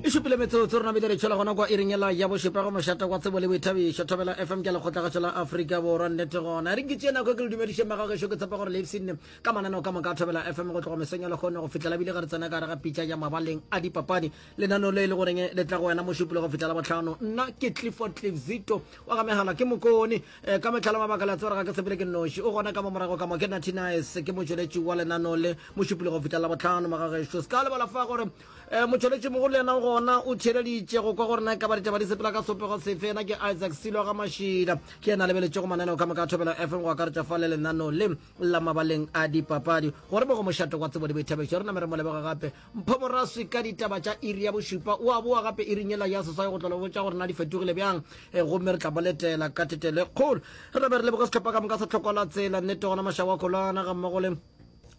e šupile metsotso rena bile re tšhela gona kwa iringela ya bošepa go mošata kwa tsebo le boithabišo thobela fm ke lekgotlagatšo la aforika borwa nnete gona re nkitše nako ke le dumediše magagešo ke tshepa gore leipsene ka mananeo ka moka thobela fm go tlogo mesong ya lekgone go fitlhela bile ga re tsena ka re ga pitša ya mabaleng a dipapadi lenaneo le e le goreng le tla go wena mošupile go fitlhela botlhano nna ke clifford clifzito wa ga megala ke mokone Eh, ka metlhala mabaka la tsebara ga ke sepele ke noši o gona ka mo morago ka mo ke natinaes ke motšweletši wa lenano le mošupile go fihla la botlhano magagešo se ka lebala fa gore eh, motšweletši mogolo le yena gona o theeleditše go kwa gore na e ka ba ditaba di sepela ka sopego sefe ena ke isaac silo ga mašila ke yena lebeletše go mananeo ka moka thobelo fm go akaretša fa le lenano le la mabaleng a dipapadi gore mo go mošate wa tsebo le boithabegišo re name re mo lebega gape Mpho Moraswi ka ditaba tša iri ya bošupa. O a boa gape iring yela ya seswai go tla le botša gore na di fetogile bjang, eh, gomme re tla boletela ka thetelo e kgolo. Re tla be re leboge sehlopha ka moka sa Tlhoko la Tsela, nnete gona Mašago a Kholwana gammogo le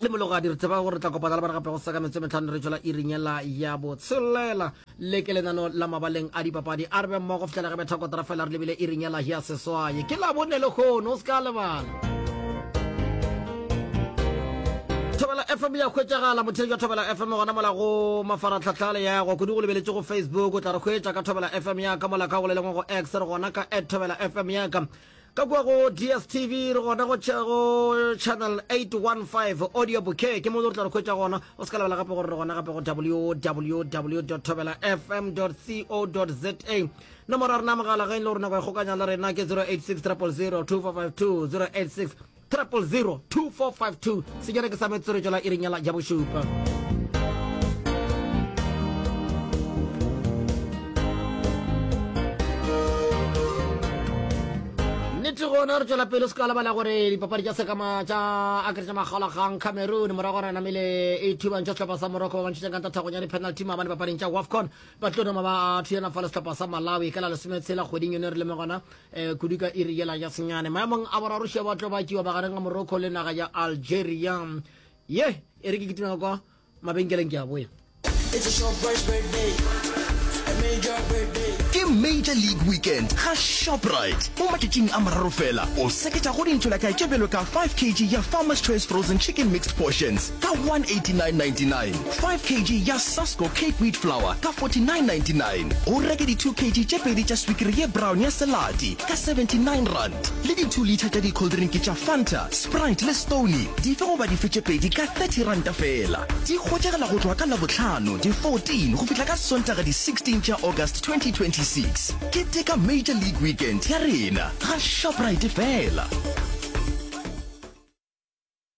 le Mologadi. Re tseba gore re tla kopana le bona gape go seka metsotso e mehlano re tšwela iring yela ya botshelela. le ke lenano la mabaleng a dipapadi a re be mmogo fitlhela ge bethakotara fela re lebile iring ya lahia seswaye ke labone le kgono o se ka lebala thobela fm ya hwetšagala mothei jwa thobela fm gona mola go mafaratlhatlha le yago kudu go lebeletše go facebook o tla re hwetša ka thobela fm yaka mola ka go lelengwe go x re gona ka at thobela fm yaka Ka kua go DSTV re gona go Channel 815 Audio Bouquet, ke mo o tla re hwetša gona. O se ka lebala gape gore re gona gape go www.thobelafm.co.za. Nomoro ya rena ya mogala ge e le gore nako ya kgokanya le rena ke 086 000 2452 086 3002452 se jana ke sa metsoretšo la iring ya la ja bošupa. nnete gona re tswela pele se ka lebala gore dipapadi tša sekama tša akeretša magalagang cameroon morago gore namele e thubantšha sehlopha sa morocco ba bantšhetseng kanta thagong ya di-penalty maabane papading tša wafcon ba tlo noma ba thuyana fa le sehlopha sa malawi ka la lesometshela kgweding yone re leme gona um kudu ka iri yela ya senyane maemong a boraro šia ba tlo ba tšiwa bagareng ga morocco le naga ya algeria ye e re ke kitimela kwa mabenkeleng ke a boya ke major league weekend ga shoprite mo matšatšing a mararo fela o seketša go dintšhela ka tšebelo ka 5 kg ya farmers choice frozen chicken mixed portions ka 189.99, 5 kg ya Sasco Cape Wheat Flour ka 49.99, o reke di 2 kg tše pedi tša swikiri ye brown ya Selati ka 79 rand, le di 2 litha tša dikholdrinki tša Fanta, Sprite le Stoney dife goba dife tše pedi ka 30 ranta feela. Di hwetšagala go tloga ka Labohlano di 14 go fihla ka Sontaga di 16 tša August 2026. Keteka Major League Weekend ya rena ga Shoprite feela.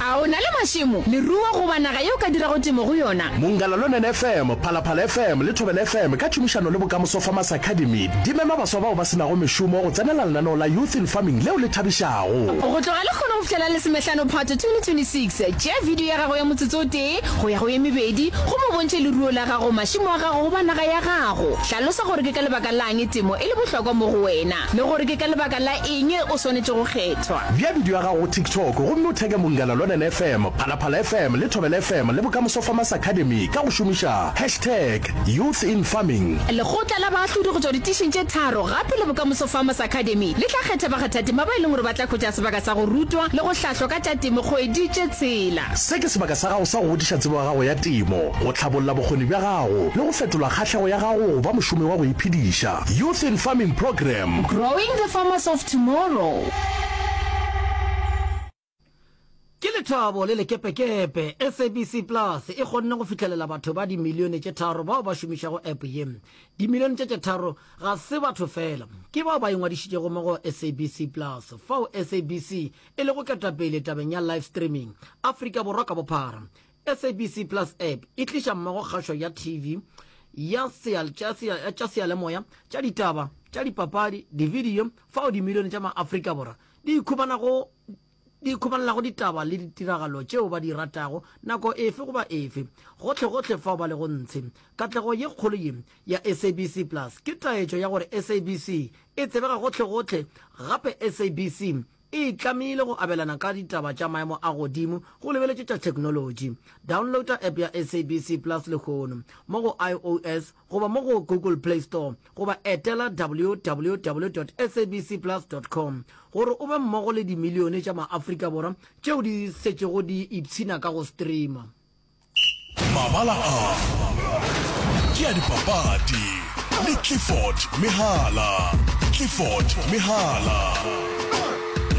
A o na le mašemo, leruo goba naga ye o ka dirago temo go yona? Mongalalonene FM, Phalaphala FM le Thobela FM ka tšhomišano le Bokamoso Farmers Academy di mema baswa bao ba se nago mešomo go tsenela lenaneo la Youth in Farming leo le thabišago. Go tloga lekgono go fihlela Lesomehlano Phato 2026, tšea bidio ya gago ya motsotso o tee go ya go ye mebedi gomme o bontšhe leruo la gago, mašemo a gago goba naga ya gago. Hlalosa gore ke ka lebaka la'ng temo e le bohlokwa mo go wena le gore ke ka lebaka la Eng e o swanetše go kgethwa? Bea bidio ya gago go TikTok gomme o theke Mongana Lwanene FM, Phalaphala FM le Thobela FM le Bokamoso Farmers Academy ka go šomiša hashtag YouthInFarming. Lekgotla la baahlodi go tšwa ditišing tše tharo gape le Bokamoso Farmers Academy le tla kgetha bakgathatema ba e leng gore ba tla hwetša sebaka sa go rutwa le go hlahlwa ka tša temo kgwedi tše tshela. Se ke sebaka sa gago sa go godiša tsebo ya gago ya temo, go hlabolla bokgoni bja gago le go fetola kgahlego ya gago go ba mošomi wa go iphediša. Youth in Farming Program. Growing the Farmers of Tomorrow. Ke lethabo le lekepekepe SABC Plus e kgonne go fihlelela batho ba dimilione tše tharo bao ba šomišago app ye. Dimilione tše tše tharo ga se batho fela, ke bao ba ingwadišitšego mo go SABC Plus, fao SABC e lego ketapele tabeng ya live streaming Afrika Borwa ka bophara. SABC Plus App e tliša mmogo kgašo ya TV, ya tša seyalemoya, tša ditaba, tša dipapadi, dividio, fao dimilione tša maAfrika Borwa di ikhubanago di ikhubanelago ditaba le ditiragalo tšeo ba di ratago nako efe goba efe, gohlegohle fao ba lego ntshe. Katlego ye kgolo ye ya SABC Plus ke taetšo ya gore SABC e tsebega gohlegohle gape SABC E itlamile go abelana ka ditaba tša maemo a godimo go lebeletše tša theknolotši. Downloada app ya SABC Plus lehono mo go IOS goba mo go Google Play Store goba etela www.sabcplus.com gore o be mmogo le dimilione tša maAfrika Borwa tšeo di šetšego di ipshina ka go streama. Mabala a ke a dipapadi le Clifford Mehala. Clifford Mehala,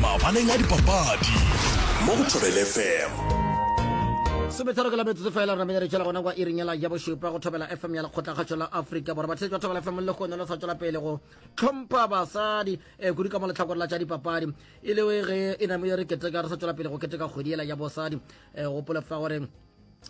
mabaleng a dipapadi mo go Thobela FM. Sometharo ke la metsotso fela re menyere tšela gona kwa iringela ya bošupa go thobela fm ya lekgotlakgatšo la afrika borwa batheletši ba thobela fm le kgone lo sa tšwela pele go tlhompha basadi um eh, kudu ka mo letlhakore la tša dipapadi e le ge e namo ye re keteka re sa tšwela pele go keteka kgwedi ela ya bosadi um gopole fa gore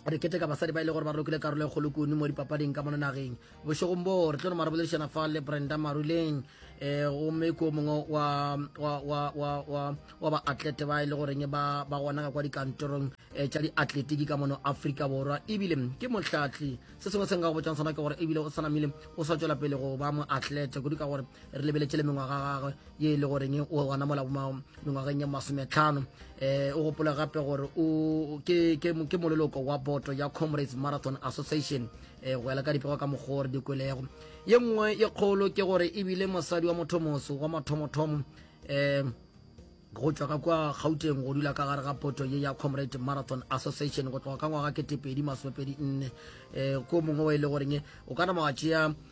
re kete ka basadi ba ile e gore ba rokile karolo e kgolo kuno mo dipapading ka mona nageng bošegong boo re tlo no maraboledišana fa le brenda maruleng um gomme ko mongwe wa baatlete ba e le goreng ba gona ka kwa dikantorong um tša diatletiki ka mono aforika borwa ebile ke motlhatli se sengwe se nka go botšang sona ke gore ebile o sanamile o sa tšwela pele go ba moatlete kudu ka gore re lebeletše le mengwaga gagwe ye e le goreng o gona mola mengwageng ya masometlhano um o gopole gape gore ke moleloko wa boto ya comrades marathon association um go ela ka dipego ka mokgwa gore dikwelego ye nngwe ye kgolo ke gore ebile mosadi wa motho moso wa mathomothomo um go tšwa ka kwa gauteng go dula ka gare ga poto ye ya comrade marathon association go tloga ka ngwaga ketepedi masomepedi nne um ko mongwe wa e le goreng o ka nama wa tšea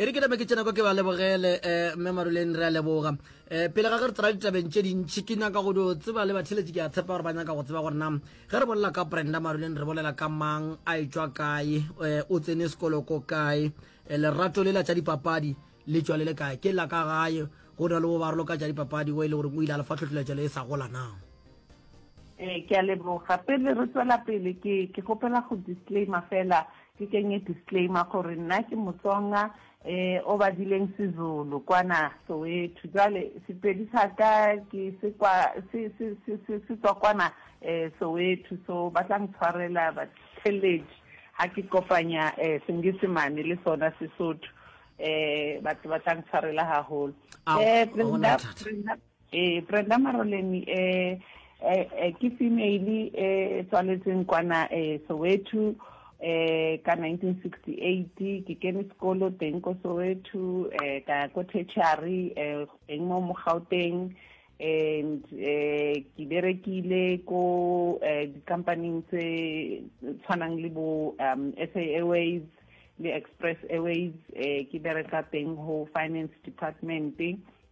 e re ke name ke tsena kwa ke ba lebogele um mme maruleng re a leboga um pele ga ge re tsena ditabeng tše dintšhi ke nyaka go dio tseba le batheletši ke a tshepa gore ba nyaka go tseba gore na ge re bolela ka brenda maruleng re bolela ka mang a e tšwa kae um o tsene sekolo ko kae um lerato le la tša dipapadi le tšwa le le kae ke la ka gae go na le bo barolo ka tša dipapadi o e le gore o ile a lefa tlhotlheletšo le e sa gola na um ke a leboga pele re tswela pele ke kgopela go disclaimer fela Ke kenye disclaimer gore nna ke Motsonga eh o badileng Sezulu kwana Soweto. Jwale Sepedi sa ka ke se kwa se se se se se tswa kwana eh Soweto so ba tla ntshwarela batlheledi ha ke kopanya eh Senyesemane le sona Sesotho eh batho ba tla ntshwarela haholo. Ao, Eh, ga gona Brenda, bothata. Brenda, Ee, Brenda Maroleni e, e, e ke female e tswaletseng kwana e Soweto e ka 1968 ke kene sekolo teng ko Soweto e ka ko tertiary e teng mo mo Gauteng and eh ke berekile ko eh dikampaneng tse tshwanang le bo um SA Airways le Express Airways eh ke bereka teng ho finance department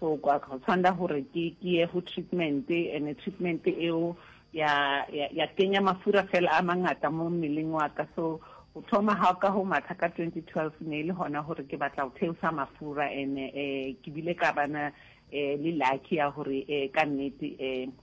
So kwa go tshwanela gore ke ke ye go treatment and treatment eo ya ya kenya mafura fela a mangata mo mmeleng wa ka so go thoma ga ka go matha ka 2012 ne e le gona gore ke batla go theosa mafura and um ke bile ka bana um le lucky ya gore um ka nnete um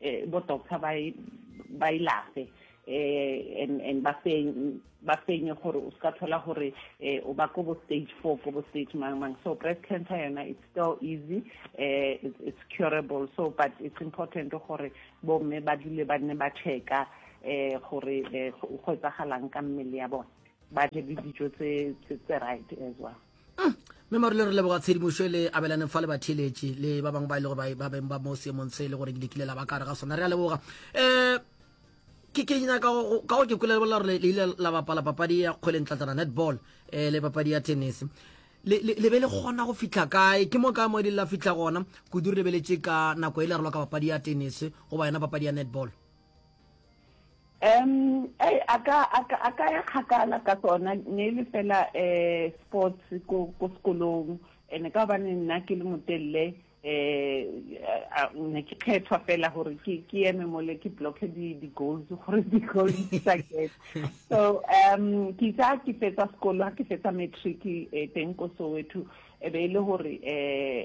E, bo doctor ba e, ba ilafe e, e, and and ba fenye ba fenye gore o ska thola gore eh, o ba ko bo stage four ko bo stage mang mang so breast cancer yona it's still easy eh, it's, it's curable so but it's important gore bomme ba dule ba nne ba checka eh, gore eh, go etsagalang ka mmele ya bone ba je le dijo tse right as well mm. mme marole re leboga tshedimošo e le abelaneng fa le batheeletše le ba bangwe ba e lego ba beng ba mo seemong se e le gore ke lekile la ba kare ga sona re a leboga um ke ke nyaka ka go ke kwele lebolela gore le ile la bapala papadi ya kgweleng tlatlana netball um le papadi ya tennis le be le kgona go fitlha kae ke mo kae mo di la fitlha gona kudu re lebeletše ka nako e le relo ka papadi ya tennis goba yona papadi ya netball um ei a ka a ka a ka ya kgakala ka tsona ne le fela eh sports ko ko sekolong ene ka ba nna ke le motelle eh ne ke khethwa fela gore ke ke yeme mole ke block di di goals gore di goals di sa get so um ke tsa ke fetsa sekolo ke fetsa matric e eh, teng ko Soweto e be ile gore eh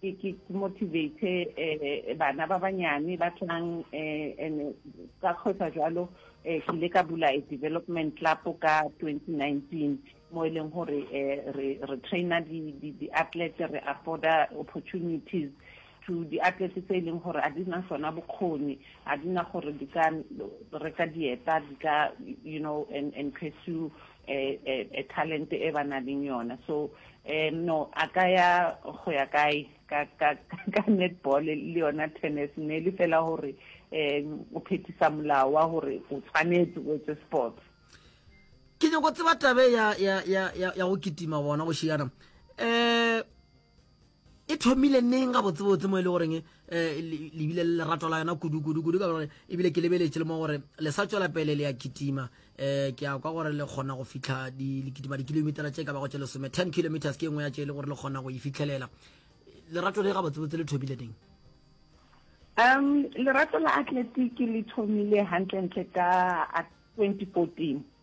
ke ke motivate eh, bana ba banyane ba tlang eh, and ka kgwetsa jalo eh, ke ile ka bula a development club ka 2019 mo e leng gore re re traina di-athlete re afforda opportunities to di-athlete tse e leng gore a di na sona bokgoni a di na gore di ka reka dieta di ka you know and, and pursue e, e, e talent e ba na leng yona so um no a ka ya go ya kae ka ka ka netball le yona tennis ne le fela gore um o phethisa molao wa gore o tshwanetse o etse sports ke nyako tseba tabe ya ya ya ya go kitima bona go šiana um e thomile neng ga botsebotse mo e le goreng eh, lebile le lerato la yona kudukudukudu ka gore ebile ke lebeletse le mo gore le sa tswela pele le ya kitima um eh, ke ya kwa gore le kgona go fitlha le kitima dikilomitara tse ka bago tse lesome ten kilometers ke e nngwe ya tse e le gore le kgona go e fitlhelela lerato le ga botsebotse le thomile neng um lerato la atletiki le thomile gantlentle ka 2014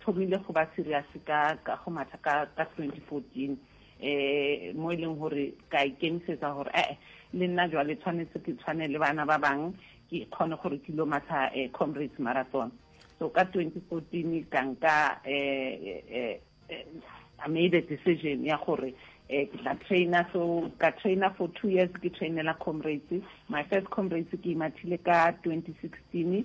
thomile go ba serious ka ka go matha ka ka 2014 um mo e leng gore ka ikemisetsa gore ee le nna jwale tshwanetse ke tshwane le bana ba bang ke kgone gore ke lo matha um comrades marathon so ka 2014 ka nka um I made a decision ya gore eh ke tla trainer so ka trainer for two years ke trainela comrades my first comrades ke imathile ka 2016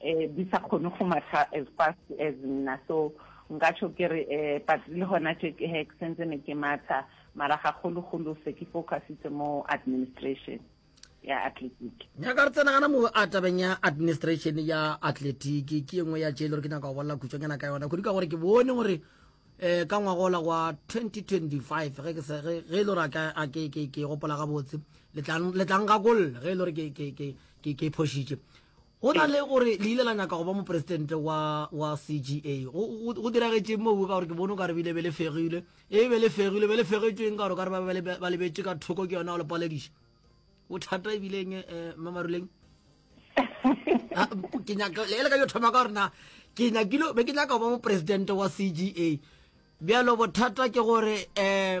eh, di sa kgone go matha as fast as nna so nka tsho ke re eh, but le gona tše ke hek sentse ne ke matha mara gagologolo se ke focusitse mo administration ya athletic nyaka re tsena gana mo a tabeng ya administration ya athletic ke engwe ya tše e le gore ke nyaka go bolela khutšonyana ka yona kodi ka gore ke bone gore um ka ngwagola wa 2025 ge e le gore ke gopola gabotse letlang gakolle ge e le gore ke phošitše Go na le gore le ile la nyaka go ba mopresidente wa, wa CGA, go, go, go diragetšeng moo? Ka gore ke bone o ka re bile be le fegilwe. E be le fegilwe, be le fegetšweng ka gore o ka re ba be ba lebetše ka thoko ke yona o le palediša. Bothata e bileng eh, eh Mmamaruleng? Ah, ke nyaka le ka yo thoma ka rena ke nyakile be ke nyaka go ba mopresidente wa CGA bjalo bothata ke gore eh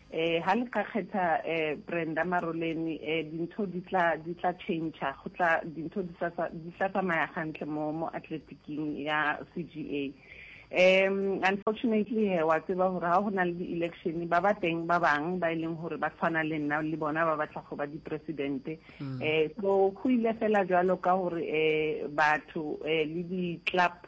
E, ha le ka kgetha e, Brenda Maroleni e, dintho di tla di tla change go tla dintho di sa di tla tsamaya gantle mo mo athletiking ya CGA um unfortunately he wa tseba gore ga go na le di-election ba ba teng ba bang ba e leng gore ba tshwana le nna le bona ba batla go ba dipresidente um so go ile fela jalo ka gore um batho um le di-club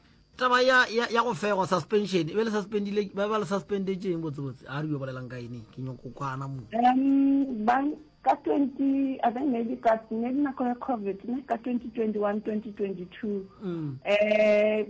Taba ya, ya, ya go fegwa, suspension, e be le suspendile, ba ba le suspendetšeng botsebotse, a re yo bolelang ka ene, ke nyoko kwana mo. Um, ba, ka 20, I think maybe ka, maybe nako ya COVID, ne, ka 2021, 2022. Mm. Eh,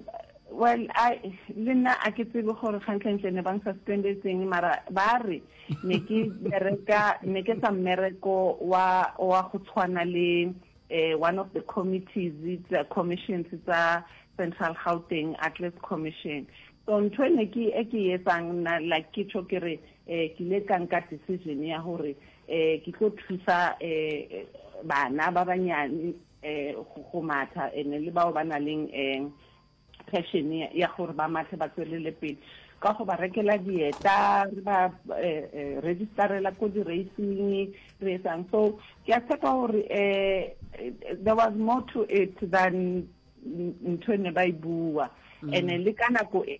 well i le nna a ke tsebe gore kgantlentle ne bang suspendetseng mara ba re ne ke bereka ne ke sa mmereko wa wa go tshwana le One of the committees tsa commissions tsa Central Gauteng Athletes Commission. So ntho e ne ke e ke e etsang nna like ke tšho ke re eh, ke ile ka nka decision ya gore eh, ke tlo thusa eh, bana ba banyane eh, go matha ene le bao ba na leng eh, Passion ya gore ba matle ba tswelele pele ka go ba rekela dieta re ba registerela ko di racing re etsang so ke a tshepa gore um there was more to it than ntho e ne ba e bua mm. and le ka nako e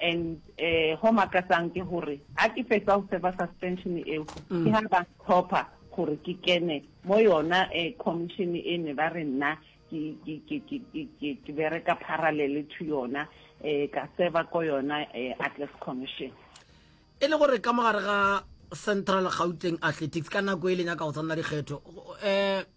And ho makatsang ke hore ha ke fetsa ho server suspension eo ke ha ba tlhopha gore ke kene mo yona commission e ne ba re nna ke bereka parallel to yona ka server ko yona Atlas Commission e le gore ka mogare ga Central Gauteng Athletics ka nako e leng ya ka go tshwanela dikgetho um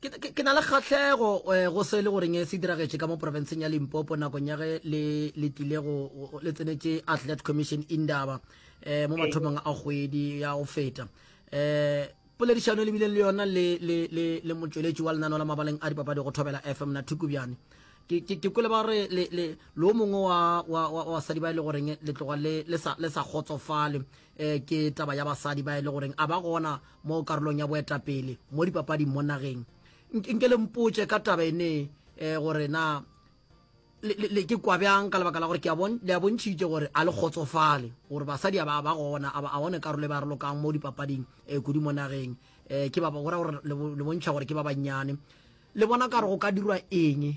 ke na le kgatlhego eh, go se le goreng eh, se diragetše ka mo porofenseng ya limpopo nakong ya ge le tlile go le tsenetše athlete commission indaba um mo mathomong a kgwedi ya go feta um poledišano e lebileng le yona le motsweletši wa lenano la mabaleng a dipapadi go thobela fm na thukubjane ke kwele ba re lo mongwe wa basadi ba e le goreng le tloga le sa kgotsofale eh, ke taba ya basadi ba e le goreng a ba gona mo karolong ya boetapele mo dipapading mo nageng nke le mpotse ka taba ene eh, gore na le ke kwa bjang ka lebaka la gore le a bontšhitše gore a le kgotsofale gore basadi ba ba gona a one karolo e ba re lokang mo dipapading um kudu mo nageng um ke ba gore le bontšha gore ke ba bannyane le bona ka re go ka dirwa eng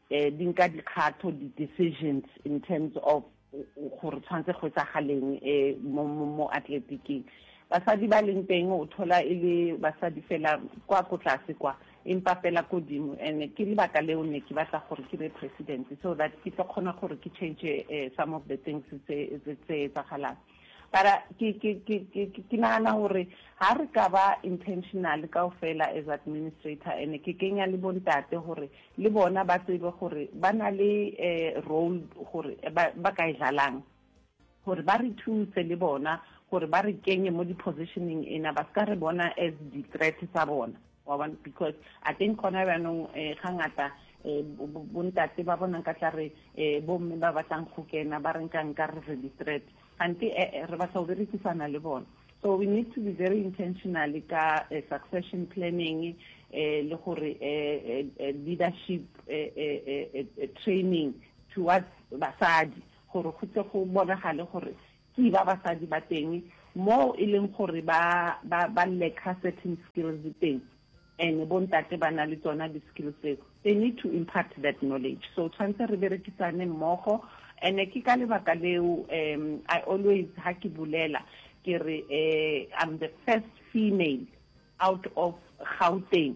eh, di nka dikgatho di-decisions in terms of gore tshwanetse go etsagaleng eh, mo, mo, mo atletiking basadi ba leng teng o thola e le basadi fela kwa ko tlase kwa empa fela kodimo and ke lebaka leo ne ke batla gore ke be president so that ke tlo kgona gore ke change uh, some of the things tse etsagalang Mara ke, ke, ke, ke, ke, ke nagana gore ha re ka ba intentional kaofela as administrator and ke kenya le bontate gore le bona ba tsebe gore ba na le eh, role gore ba, ba ka e dlalang gore ba re thuse le bona gore ba re kenye mo di-positioning ena ba se ka re bona as di-threat tsa bona Wa bona, because I think gona bjanong eh, ga ngata eh, bontate ba bonang ka tla re eh, bomme ba batlang go kena ba reng ka nka re re di-threat gante eh, eh, re batla go berekisana le bona so we need to be very intentional ka eh, succession planning eh, le gore eh, eh, leadership eh, eh, eh, training towards basadi gore go tle go bonagale gore Ke ba basadi ba teng moo e leng gore ba ba ba lacker certain skills teng and bo ntate ba na le tsona di skills tseo they need to impart that knowledge so tshwanetse re berekisane mmogo and ke ka lebaka leo um i always ha ke bulela ke re um i'm the first female out of gauteng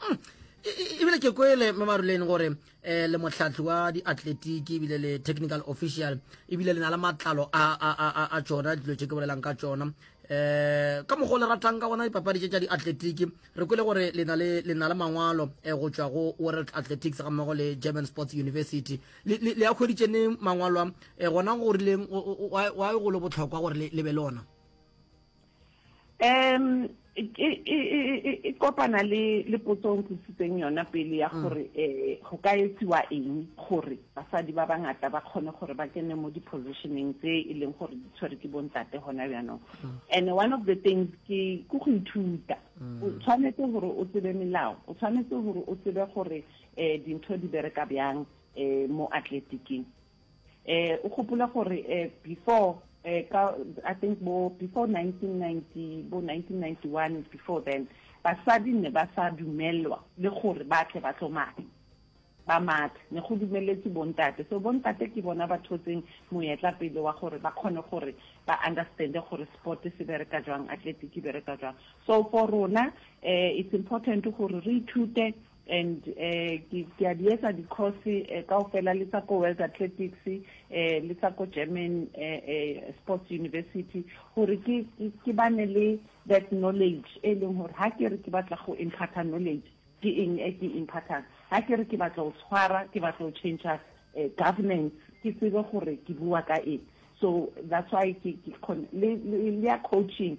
hmm. ebile ke kwele mamaruleni gore um le motlhatlhi wa diatletiki ebile le technical official ebile le na le matlalo a tsona dilo tse ke bolelang ka tsona um ka mokgwa o le ratang ka gona dipapadi tse tsa diatletiki re kwele gore le na le mangwalo um go tswa go world athletics ga mmogo le german sports university le a kgweditse ne mangwalo a um gona go rileng wa e golo botlhokwa gore le be le ona um e kopana le le potso o ntlositseng yona pele ya mm. gore um go ka etsiwa eng gore basadi ba bangata ba kgone gore ba kene mo di-positioneng tse e leng gore di tshwere ke bontate gona bjanong mm. and one of the things ke ke go ithuta mm. o tshwanetse gore o tsebe melao o tshwanetse gore o tsebe gore um dintho di bereka bjang um mo atleticeng eh o gopola gore eh before eh ka i think bo before 1990 bo 1991 before then basadi ne ba sa dumelwa le gore ba tle ba tlo mathe ba mathe ne go dumeletse bontate so bontate ke bona ba thotseng moyetla pele wa gore ba kgone gore ba understande gore sport se bereka jwang athletic e bereka jwang so for rona eh it's important gore re ithute And um ke a di etsa di course um kaofela le tsa ko World Athletics um le tsa ko German um Sports University gore ke ke bane le that knowledge e leng gore ha ke re ke batla go impart knowledge ke eng e ke impart-ang ha ke re ke batla go tshwara ke batla go change um governance ke tsebe gore ke bua ka eng so that's why ke le ya coaching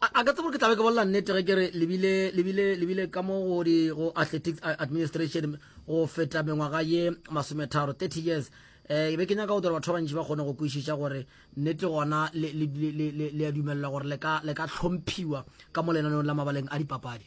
A, a ka tsebo ke tlabe ke bolela nnete ge ke re lebile lebile lebile ka mo go di go athletics administration go feta mengwaga ye masometharo 30 years eh be ke nyaka go dira batho ba bantši ba kgone go kwešiša gore nnete gona le a dumelela gore le ka tlhomphiwa ka mo lenaneong la mabaleng a dipapadi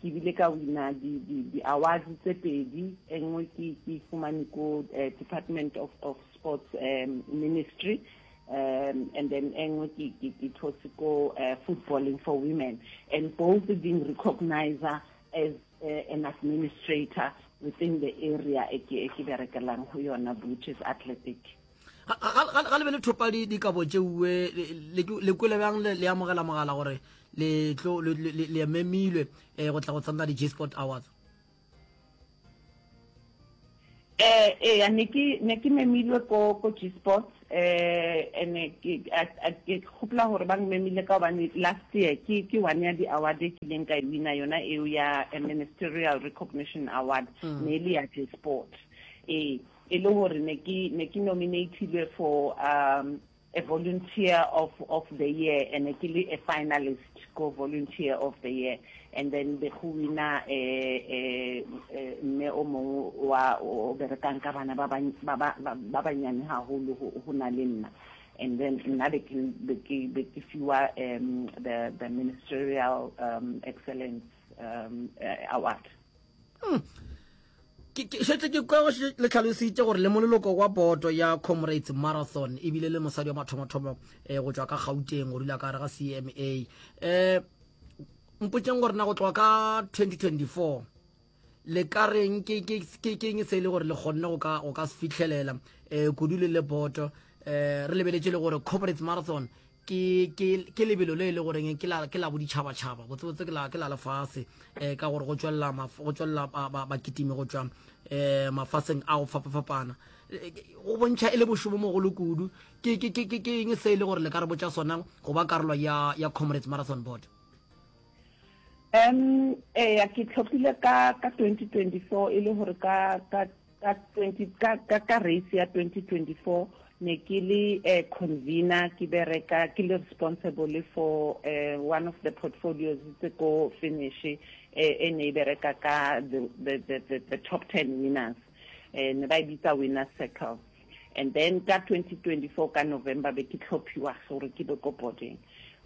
Ke bile ka wina di, di, di awards tse pedi, e nngwe ke, ke e fumane ko eh, Department of, of Sports um, Ministry um, and then e nngwe ke, ke, ke those ko uh, Footballing for Women and both being recognized as uh, an administrator within the area e ke, e ke berekelang ho yona which is athletic ga le be le thopa dikabo tšeuwe le kwele bjang le amogela mogala gore le memilwe eh, go tla go tsena di-j sport awards eh eh ne ke ne ke memilwe ko ko G Sports eh ene ke ke khopla hore ba ngmemile ka hobane last year ke ke one ya di award e ke leng ka e wina yona eo ya eh, ministerial recognition award mm. ne le ya G Sports eh e le gore ne ke ne ke nominatilwe for um a volunteer of of the year and ke le a finalist go volunteer of the year and then be go wina e e mme o mongwe wa o berekang ka bana ba ba ba banyane haholo go na le nna and then nna be ke be ke fiwa um the the ministerial um excellence um award hmm. ke šetse ke kwa le tlhalositše gore le moleloko wa boto ya comrades marathon ebile le mosadi wa mathomothomo um go tšwa ka gauteng go dula ka gare ga cma um eh, mpotseng gore na go tloga ka 2024 le ka reng ke keng se e le gore le kgonne go ka se fitlhelela um kudu le le boto um re lebeletse le gore comrades marathon ke ke ke lebelo le le goreng ke la ke la boditšhaba tšhaba botse botse ke la ke la lefase eh ka gore go tswella go tswella ba kitime go tswa eh mafaseng a go fapa fapana eh, go bontšha e le boshobo mo go le kudu ke ke ke ke ke eng se e le gore le ka re botsa sona go ba karolo ya ya comrades marathon board em eh ya ke tlhophile ka ka 2024 e le gore ka ka Ka 20 ka ka ka race ya 2024 ne ke le eh, convener ke bereka ke le responsible for eh, one of the portfolios tse ko finish eh, e ne e bereka ka the, the, the, the, the top 10 winners eh, ne ba e bitsa winner circle and then ka 2024 ka November be ke tlhophiwa gore ke be ko boding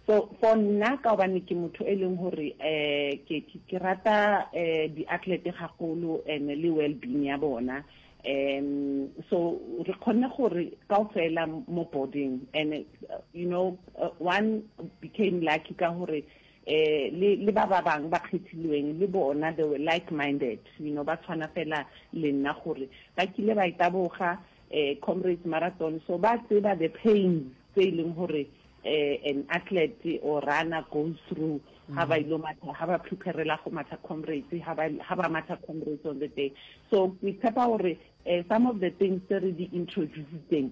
so for nna ka gobane ke motho e leng gore um ke ke rata um di-athlete gagolo and le well-being ya bona um so re kgonne gore ka o fela mo boarding and you know uh, one became lucky ka gore um le le ba ba bang ba kgethilweng le bona they were like minded you know ba tshwana fela le nna gore ba kile ba e taboga um comrades marathon so ba tseba the pains tse e leng gore uh, an athlete or runner goes through ha ba ilo matha ha ba preparela go matha comrades ha ba ha ba matha comrades on the day so ke tshepa gore uh, some of the things tse re di introducitseng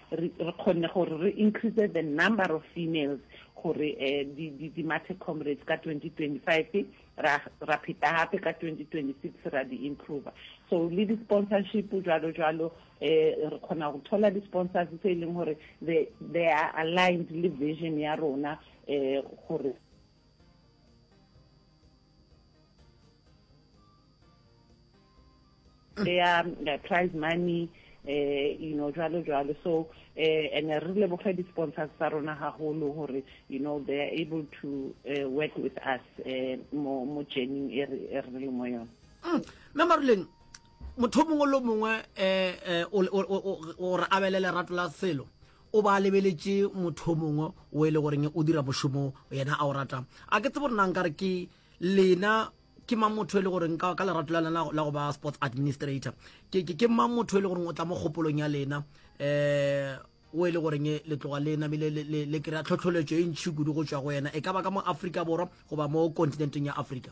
re re kgonne gore re increase the number of females gore um di di di mathe comrades ka 2025 ra ra pheta gape ka 2026 ra di improve so le di sponsorship jalo jalo um re kgona go thola di sponsors tse e leng gore they they are aligned le vision ya rona um gore ya uh, prize money eh you know jwalo jwalo so eh and re leboge di sponsors tsa rona haholo hore you know they are able to uh, work with us eh mo mo journey e re e re le mo yona mm. mme maruleng motho mongwe le mongwe eh, eh o re abele lerato la selo O ba a lebeletše motho o mongwe wo e le goreng o dira mošomo yena a o rata. A ke tsebe gore na nkare ke lena ke mang motho e le goreng ka ka lerato la lena la go ba sports administrator ke ke ke mang motho e le goreng o tla mo kgopolong ya lena um o e le goreng le tloga le namile le kry-a tlhotlholetšo e ntšhi kudu go tšwa go yena e ka ba ka mo afrika borwa goba mo continenteng ya afrika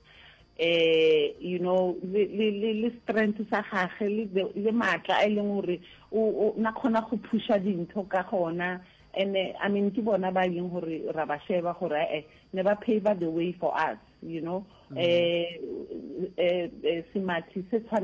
eh you know le le le strength sa gage le le matla a e leng gore o na kgona go phusha dintho ka gona and eh, i mean ke bona ba e leng gore ra ba sheba gore eh, eh ne ba pave the way for us you know mm. eh eh, eh semathi se tshwana